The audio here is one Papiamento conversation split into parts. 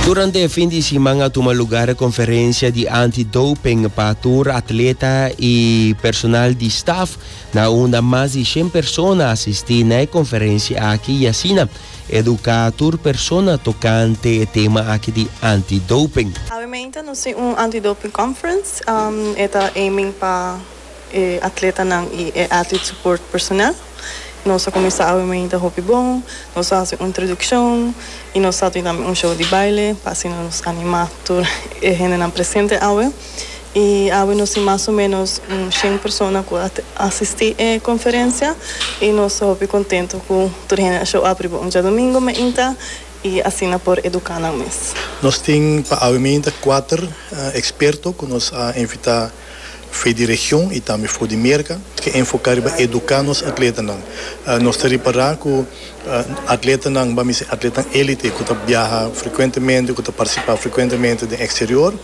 Durante e fin di siman a tuma lugar conferencia di anti-doping pa tur atleta y personal di staff na unda mas di 100 persona asisti na e conferencia aki y asina educa tur persona tocante e tema aki di anti-doping. Awemente nos tin un anti-doping conference, e ta aiming pa e atletanan y e athlete support personal. Nos a kuminsá awe mainta hopi bon. Nos a hasi un introdukshon i nos a tin tambe un show di baile pa asina nos animá tur e hendenan presente awe. I awe nos tin mas o ménos un shen persona ku a asistí e konferensia i nos ta hopi kontentu ku tur hende a show up riba un diadomingu mainta i asina por eduká nan mes. Nos tin pa awe mainta kuater eksperto ku nos a invitá. Fe di region y tambe for di Merca ke enfoca riba educa nos atletanan. Nos ta ripara cu atletanan, ba mester atletan elite cu ta biaha frecuentemente, cu ta participa frecuentemente den exterior,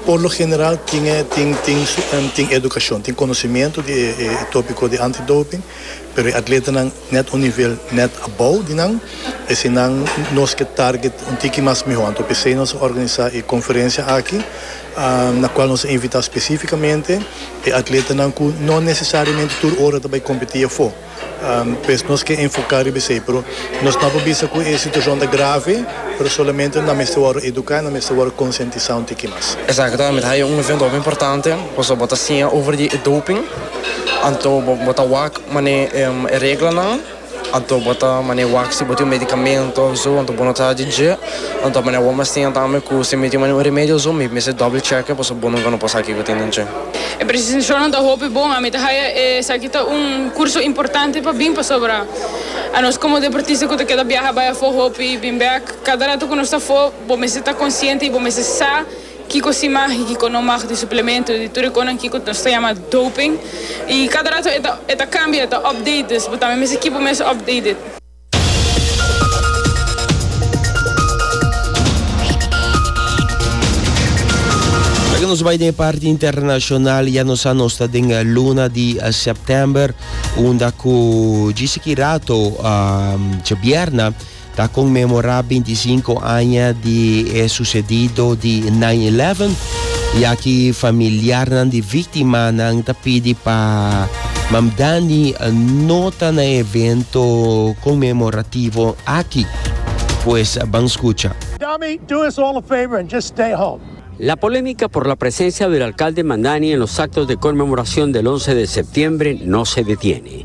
por lo general tin e tin educacion, tin conocimiento di e topico di antidoping, pero e atletanan net un nivel net above di nan, eseinan nos ke target un tiki mas miho. Anto p'esei nos a organisa e conferencia aki na cual nos a invita specificamente e atletanan cu no necesariamente tur ora ta bay competi afo, pues nos ke enfoca riba esey, pero nos no a por bisa cu e situacion ta grave, pero solamente nan mester wòrdu educa, nan mester wòrdu conscientisa un tiki mas. Exacto, mira hay un evento hopi importante, pasobra bo ta siña over di e doping, anto bo ta wak mane e reglanan. Anto bo ta mane wak si bo tin un medikamento of zo anto bo no ta di dje anto mane awor mas tin yanta ami ku si mi tin mane un remedio of zo mi mester doble chèk'e pasobra bo nunka no por sa kiko tin den dje. E presentacionnan ta hopi bon, ami ta haya esaki ta un curso importante pa bin pasobra anos como deportista cu ta keda biaha bay afo hopi y bin bek, cada rato cu nos ta afo bo mester ta consciente y bo mester sa. Kiko si mag y kiko no mag di suplemento di tur e konan kiko nos ta yama doping y cada rato e ta e ta cambia e ta update dus bo tambe mester keep bo mes updated. Laga nos bai den e parti internacional ya nos sa nos ta den luna di september unda cu djis aki rato djabierna. Ta conmemora binticinco aña di e sucedido di nine eleven y aki familiarnan di victimanan ta pidi pa Mam Danny no ta na evento conmemorativo aki. Pues ban scucha. Dami, do us all a favor and just stay home. La polémica por la presencia del alcalde Mamdani en los actos de conmemoración del once de septiembre no se detiene.